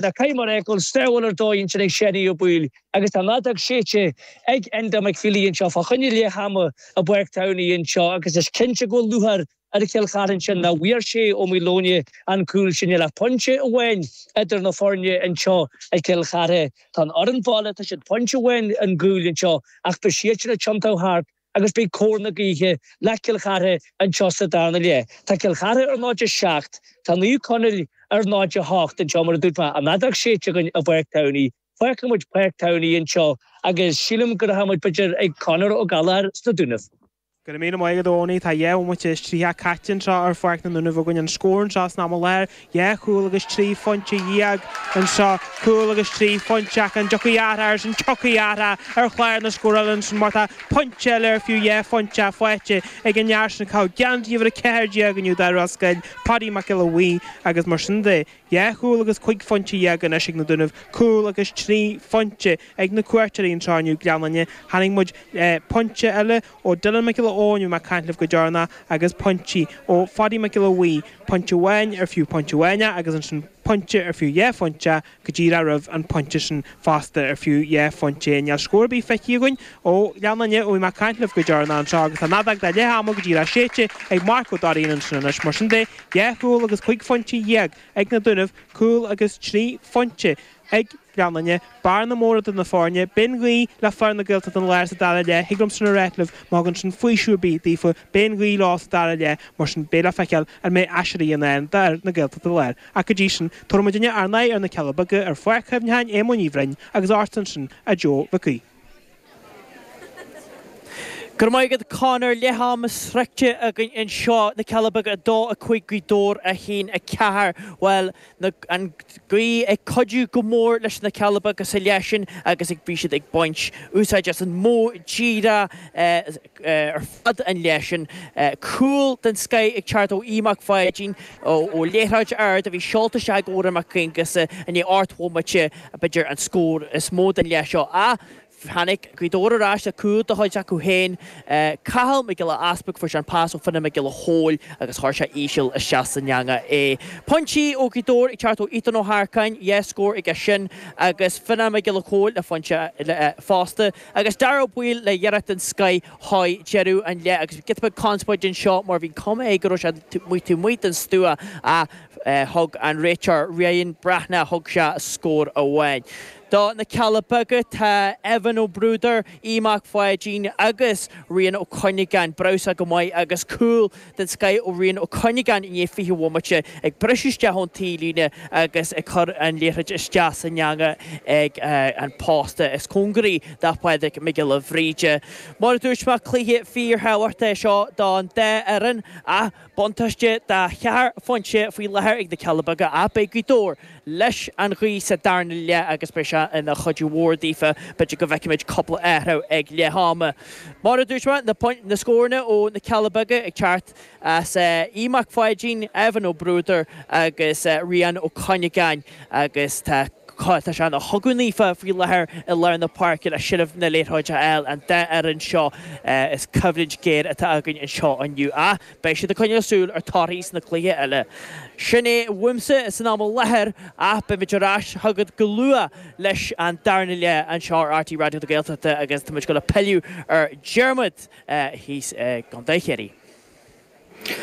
Na Caimir ag an sábháil ar dóigh ansin ag Séanie Ó Baoill agus tá an fheadóg séidte ag Enda McFeely anseo fá choinne leath ama i bPáirc Thamhnaigh anseo agus is cinnte go bhfuil lúcháir ar Chill Chartha ansin nach bhfuair Shea Ó Maoileoin an cúl sin níl ach pointe amháin idir na foirne anseo i gCill Chartha tá an fhoireann baile tá siad pointe amháin chun cúil anseo ach beidh siad sin ag tiontú thart agus beidh cóir na gaoithe le Cill Chartha anseo sa darna leath. Tá Cill Chartha ar 0 7, tá Naomh Conaill ar 0 8 anseo. Mar a dúirt mé, tá an fheadóg séidte againn i bPáirc Thamhnaigh. Fágfaidh muid Páirc Thamhnaigh anseo agus sílim go rachaidh muid b'fhéidir ag Conor Ó Gallchóir sna Dúnaibh. Go raibh míle maith agat a Eoghanaí. Tá dhá bhomaite is triocha caite anseo ar Pháirc na nDúnaibh againn. An scór anseo san am i láthair, Dhá chúl agus trí phointe dhéag anseo. Cúl agus trí phointe ach an dtiocfaidh athrach ar sin? Tiocfaidh athrach ar chlár na scórála ansin mar tá pointe eile ar fiú dhá phointe faighte ag an fhear sin ag caitheamh geansaí uimhir a ceathair déag inniu d'fhir Ros Goill, Páidí Mac Giolla Bhuí, agus mar sin de dhá chúl agus cúig phointe dhéag anois ag na Dúnaibh. Cúl agus trí phointe ag na cuairteoirí anseo inniu, Gleann Fhinne. Chonaic muid pointe eile ó Dylan Mac Giolla Eoin ó bhí mé ag caint libh go deireanach, agus pointí ó Pháidí Mac Giolla Bhuí, pointe amháin ar fiú pointe amháin é agus ansin pointe ar fiú dhá phointe go díreach roimh an pointe sin fosta ar fiú dhá phointe é. Níl scór ar bith feicthe againn ó Ghleann Fhinne ó bhí mé ag caint libh go deireanach anseo agus tá an fheadóg don leath ama go díreach séidte ag Mark Ó Dairín ansin anois. Mar sin de, dhá chúl agus cúig phointe dhéag ag na Dúnaibh, cúl agus trí phointe ag. Gleann Fhinne, bearna mhór eadar na foirne. Beidh an ghaoth le fir na Gaeltachta Láir sa dara leath. Thig liomsa a ráit libh má thugann sin faoiseamh ar bith daofa, beidh an ghaoth leo sa dara leath. Mar sin beidh le feiceáil an mbeidh aiséirí i ndán d'fhir na Gaeltachta Láir. Ach go dtí sin tabharfaidh muidinne ár n-aghaidh ar na Cealla Beaga, ar Pháirc Chuimhneacháin Éamoin Uí Bhroin agus ár san sin a Joe Mhicí. Go raibh maith agat Conor, leath ama sroichte againn anseo, na Cealla Beaga 2, 5, Gaoth Dobhair 1, 4. Bhuel, na, an ghaoth ag cuidiú go mór leis na Cealla Beaga sa leath sin agus ag, bhí siad ag baint úsáid as an modh díreach eh, ar fad an leith sin. Cúl den scoith ag teacht ó Aodh Mac Pháidín ó liathróid ard a bhí seolta isteach ag Odhrán Mac Aonghusa i ndiaidh ocht mbomaite, b'fhéidir an scór is mó den leath seo. Ach tháinig Gaoth Dobhair ar ais le cúl de chuid acu féin. Cathal Mac Giolla Easpaig, fuair sé an pas ó Fhionnán Mac Giolla Chomhaill agus chuir sé íseal isteach san eangach é. Pointí ó Ghaoth Dobhair ag teacht ó Ethan Ó hEarcáin, dhá scór aige sin agus Fionnán Mac Giolla Chomhaill le pointe fosta. Agus Dáire Ó Baoill le iarracht den scoith ag deireadh an leith agus giota beag conspóide anseo mar bhí cuma air go raibh sé amuigh taobh amuigh den stua ach thug an réiteoir Ryan Breathnach, thug sé scór amháin. Do na Cealla Beaga tá Evan Ó Bruadair, Aodh Mac Pháidín agus Rian Ó Cuinneagáin breosla go maith agus cúl den scoith ó Rian Ó Cuinneagáin i ndiaidh 20 bhomaite, ag briseadh isteach ón taobh líne agus ag cur an liathroid isteach san eangach ag an posta is cóngaraí do Phádraig Mac Giolla Bhríde. Mar a dúirt mé cluiche fíorthábhachtach é seo don dá fhoireann ach buntáiste de cheithre phointe faoi láthair ag na Cealla Beaga ach beidh Gaoth Dobhair leis an ghaoth sa darna leath agus beidh sé ina chuidiú mhór daofa. B'fhéidir go bhfeicfimid cúpla athrú ag leath ama. Mar a dúirt mé, na pointí, na scóranna ó na Cealla Beaga ag teacht as Aodh Mac Pháidín, Evan Ó Bruadair agus Rian Ó Cuinneagáin agus tá tá sé ina chogadh naofa faoi láthair i lár na páirce le seilbh na liathróide a fháil an dá fhoireann seo. Is coimhlint ghéar atá againn anseo inniu. Beidh siad ag coinneáil súil ar torthaí sna cluichí eile. Sin é uaimse san am i láthair ach beimid ar ais chugat go luath leis an darna leath anseo ar RTÉ Raidió na Gaeltachta agus táimid ag dul ag pilleadh ar Dhiarmuid thíos i gContae Chiarraí.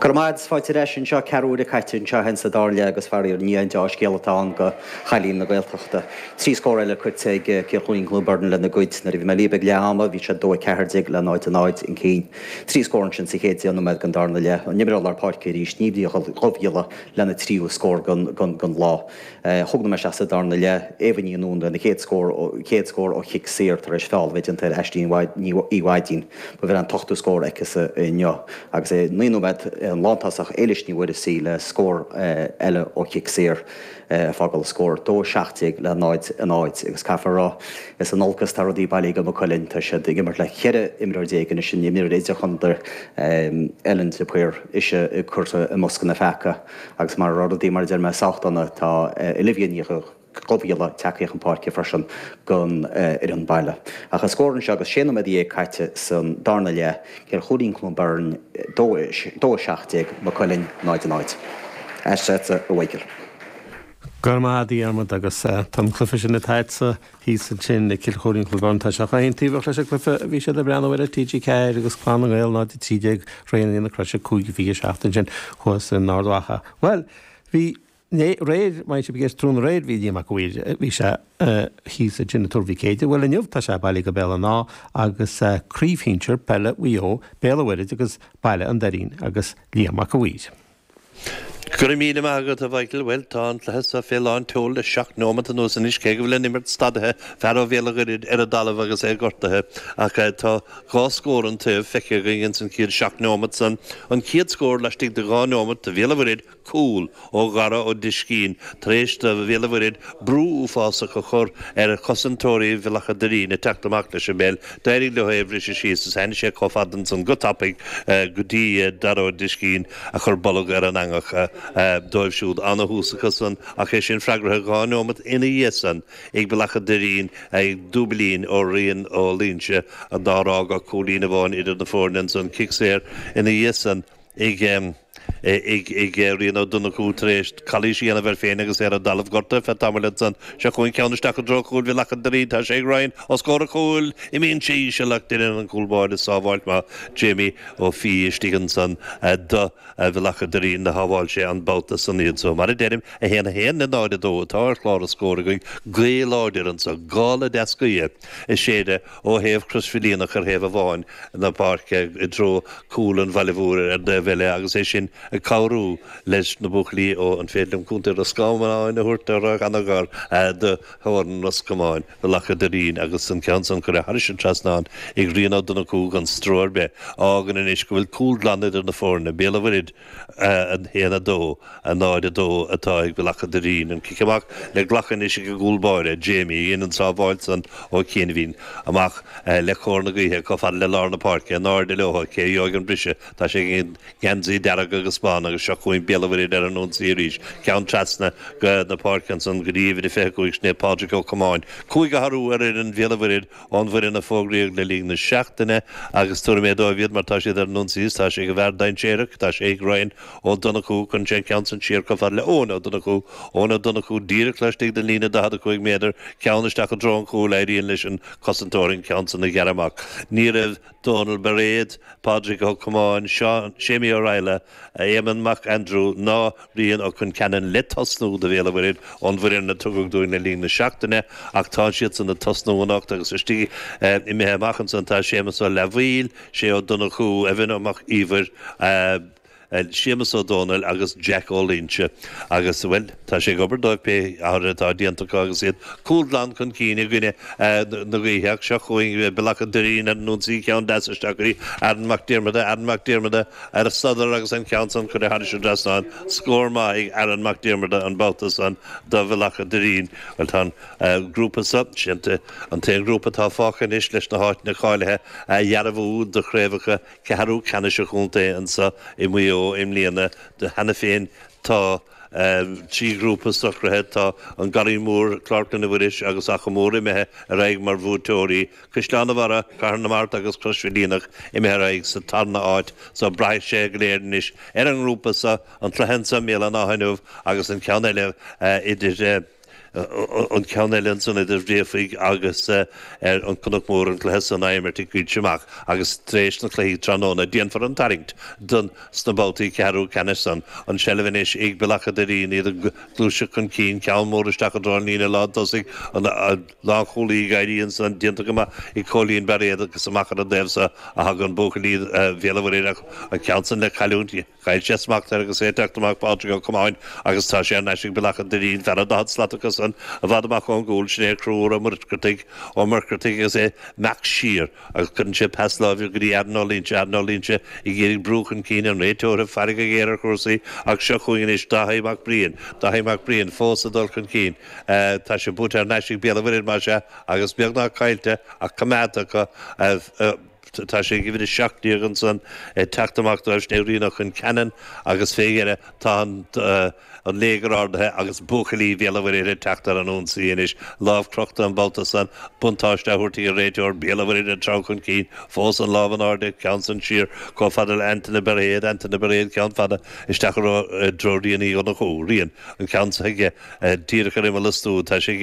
Go raibh maith agat agus fáilte ar ais anseo. Ceathrú uaire caite anseo cheana sa darna leath agus faraor ní haon dea-scéala atá ann do chailíní na Gaeltachta. Trí scór eile cuirte ag Cill Choirín Cluain Bheirn lena gcuid. Nuair a bhí mé libh ag leath ama bhí siad dó 14 le 0 0 chun cinn. Trí scór ansin sa chéad deich nóiméad den darna leath, an t-imreoir lár páirce arís, Niamh Ní Dhubhghiolla lena tríú scór den lá. Cúig nóiméad isteach sa darna leath, Éabha Ní Nuáin lena chéad chéad scór ó chic saor tar éis feall a bheith déanta ar Aisling Ní Mhaidín. Ba é an t-ochtú scór aicise inniu agus tar éis naoi nóiméad an lántosach Éilis Ní Mhuirgheasa le scór eile ó chic saor. ag fágáil scór 2-17 le 0 0 agus caithfear a rá is in olcas atá rudaí bailithe do Mhaigh Cuilinn. Tá siad ag imirt le 14 imreoir anois, an t-imreoir idirchontae Ellen de Paor is í curtha i mbosca na bpeacaí agus mura raibh rudaí mar a deir mé sách dona tá Olivia Ní Dhubhghiolla tagtha chun páirce freisin don fhoireann baile. Ach an scór anseo agus sé nóiméad déag caite san darna leath. Cill Choirín Cluain Bheirn 2 17 Maigh Cuilinn 0 0. Ar ais chugat a Mhaidhcil. Go raibh maith agat a Dhiarmaid agus tá an cluiche sin atá agatsa thíos ansin i gCill Choirín Cluain Bheirn. Tá sé chomh haontaobhach leis an gcluiche a bhí siad ag breathnú air ar TG4 agus Clann na nGael 0 13 Raonaithe na Croise 5 27 ansin thuas in Ard Mhacha. Bhuel, bhí. Né réir, maíonn siad go gcéas tráthnóna aréir bhí Liam 'ac a' Mhaoir, bhí sé thíos dúinn i dTuar Mhic Éadaigh, bhuel inniu tá sé bailithe go Béal an Átha agus craobh shinsear peile Mhaigh Eo, Béal a' Mhuirthid agus Bealach an Doirín agus Liam 'ac a' Mhaoir. Go raibh míle maith agat a Mhichael, bhuel tá an cluiche so fé lán tseol le seacht neomat anuas anois cé go bhfuil an imirt stadaithe, fear ó Bhéal a' Mhuirthid ar a' dtalamh agus é gortaithe ach tá dhá scór an taobh feicthe againn ins an chéad seacht neomat san, an chéad scór laistigh de dhá neomat do Bhéal a' Mhuirthid, cúl ó Dhara Ó Díscín tar éis do Bhéal an Mhuirthead brú uafásach a chur ar chosantóirí Bhealach an Doirín ag teacht amach leis an bpeil, d'éirigh leo é a bhriseadh síos is tháinig sé chomh fada san go tapaidh go dtí Dara Ó Díscín a chur bolg ar an eangach dóibh siúd an-thús acu san ach é sin freagraithe dhá neomat ina dhiaidh san ag Bealach an Doirín ag dúiblín ó Rian Ó Loingsigh nár fhág ach cúilín amháin idir na foirne ansan cic saor ina dhiaidh san ag. ag Rian Ó Donnchú tar éis calaois a dhéanamh air féin agus é ar an dtalamh gortaithe ar feadh tamaill ansan seo chugainn ceann isteach i dtreo chúil Bhealach an Doirín tá sé ag Ryan os comhair an chúil imíonn sé íseal ach deineann an cúl báire sábháilt maith Jamie Ó Fiaigh istigh ansan do Bhealach an Doirín do shábháil sé an babhta san iad so mar a deirim 1-1 le 0-2 atá ar chlár an scóir againn gaoth láidir ansan gála deas gaoithe ag séideadh ó thaobh Chrois Mhaoilíona ar thaobh amháin na páirce i dtreo cúl an Bhaile Mhóir ar an taobh eile agus é sin ag cabhrú leis na buachaillí ó an féidir liom Contae Ros Comáin a thabhairt air, ana-ghar do theorainn Ros Comáin Bealach an Doirín agus an ceann san curtha thairis an trasnán ag Rian Ó Donnchú gan stró ar bith a fhágann anois go bhfuil cúl glan idir na foirne, Béal an Mhuirthead. 1-2, 0-2 atá ag Bealach an Doirín an cic amach le glacadh anois ag an gcúl báire, Jamie, a dhein an sábháil san ó chianaibhín, amach le cóir na gaoithe chomh fada le lár na páirce, in airde leo, cé a gheobhaidh an briseadh? Tá sé ag an geansaí dearg agus bán agus seo chugainn Béal an Mhuirthead ar an ionsaí arís, ceann trasna na páirce ansan go dtí uimhir a 25, sin é Pádraig Ó Comáin, cúig athrú ar fhoireann Bhéal an Mhuirthead, Ón bhfoireann a fógraíodh le linn na seachtaine agus tabharfaidh mé daoibh iad mar tá siad ar an ionsaí is tá sé ag an bhfear dainséarach, tá sé ag Ryan Ó Donnchú, cuireann sé an ceann san siar chomh fada le Eoghan Ó Donnchú, Eoghan Ó Donnchú díreach laistigh den líne 45 méadar, ceann isteach i dtreo an chúil, éiríonn leis an cosantóir an ceann san a ghearradh amach. Ní raibh. Dónal Bairéad, Pádraig Ó Comáin, Séimí Ó Raghallaigh, Éamonn Mac Aindriú ná Rian Ó Concheanainn le tosnú do Bhéal an Mhuirthead ón bhfoireann a tugadh dúinn le linn na seachtaine ach tá siadsan ag tosnú anocht agus istigh imithe amach ansan tá Séamus Ó Leathmhaoil, Shay Ó Donnchú, Evan Mac Íomhair. Séamus Ó Dónaill agus Jack Ó Loingsigh agus, bhuel, tá sé ag obair dóibh pé athruithe atá déanta acu agus iad cúl glan chun cinn i gcoinne na gaoithe ach seo chugainn Bealach an Doirín ar an ionsaí, ceann deas isteach go dtí Aaron Mac Diarmada, Aaron Mac Diarmada ar an sodar agus an ceann san curtha thairis an trasnán, scór maith ag Aaron Mac Diarmada an babhta san do Bhealach an Doirín. Bhuel, tá an grúpa seo, siad an t-aon ghrúpa atá fágtha anois leis na háiteanna cáilithe a dhearbhú do chraobhacha ceathrú ceannais an chontae anseo i Maigh Eo i mbliana. Cheana féin tá trí ghrúpa socraithe. Tá An Garraí Mór, Clár Chlainne Mhuiris agus Achadh Mór imithe ar aghaidh mar bhuaiteoirí. Caisleán a' Bharra, Cathair na Mart agus Crois Mhaoilíona imithe ar aghaidh sa tarna áit. So braithfidh sé go léir anois ar an ngrúpa seo, an cluiche anseo i mBéal an Átha inniu agus an ceann eile idir an ceann eile ansan idir Bhréachmhaigh agus an Cnoc Mór an cluiche san á imirt i gCoillte Mach agus tar éis na cluichí tráthnóna déanfar an tarraingt don sna babhtaí ceathrú ceannais san. An seilbh anois ag Bealach a' Doirín iad ag gluaiseacht chun cinn ceann mór isteach i dtreo an líne lán tosaigh an lánchúlaí ag éirí ansan déanta go maith ag Cóilín Bairéad agus amach ar an dtaobh so a thagann buachaillí Bhéal a' Mhuirthead an ceann san le cailliúint Chaill sé smacht air agus é ag teacht amach Pádraig Ó Comáin agus tá sé ar n-ais ag Bealach an Doirín, fan an daichead slat acu san i bhfad amach ón gcúl, sin é Conchúr Ó Muircheartaigh, Ó Muircheartaigh agus é ag imeacht siar agus cuireann sé pas láimhe go dtí Aaron Ó Loingsigh, Aaron Ó Loingsigh ag iarraidh brú chun cinn an réiteoir ag faire go géar ar chúrsaí ach seo chugainn anois Dáithí Mac Briain, Dáithí Mac Briain fós ag dul chun cinn, tá sé buaite thar n-ais ag Béal an Mhuirthead más ea agus beagnach caillte ach coimeádta acu. Tá sé ag uimhir a seacht déag ansan ag teacht amach dóibh sin é Rian Ó Concheanainn agus fé dheireadh tá an léigear ardaithe agus buachaillí Bhéal a'Mhuirthead ag teacht ar an ionsaí anois. Lámh crochta an babhta san, buntáiste á thabhairt ag an réiteoir, Béal a' Mhuirthead ag treabhadh chun cinn, fós an lámh in airde, ceann san siar chomh fada le Antaine Bairéad, Antaine Bairéad ceann fada isteach i dtreo Riain Uí Dhonnchú, Rian, an ceann so aige díreach ar imeall an stua, tá sé ag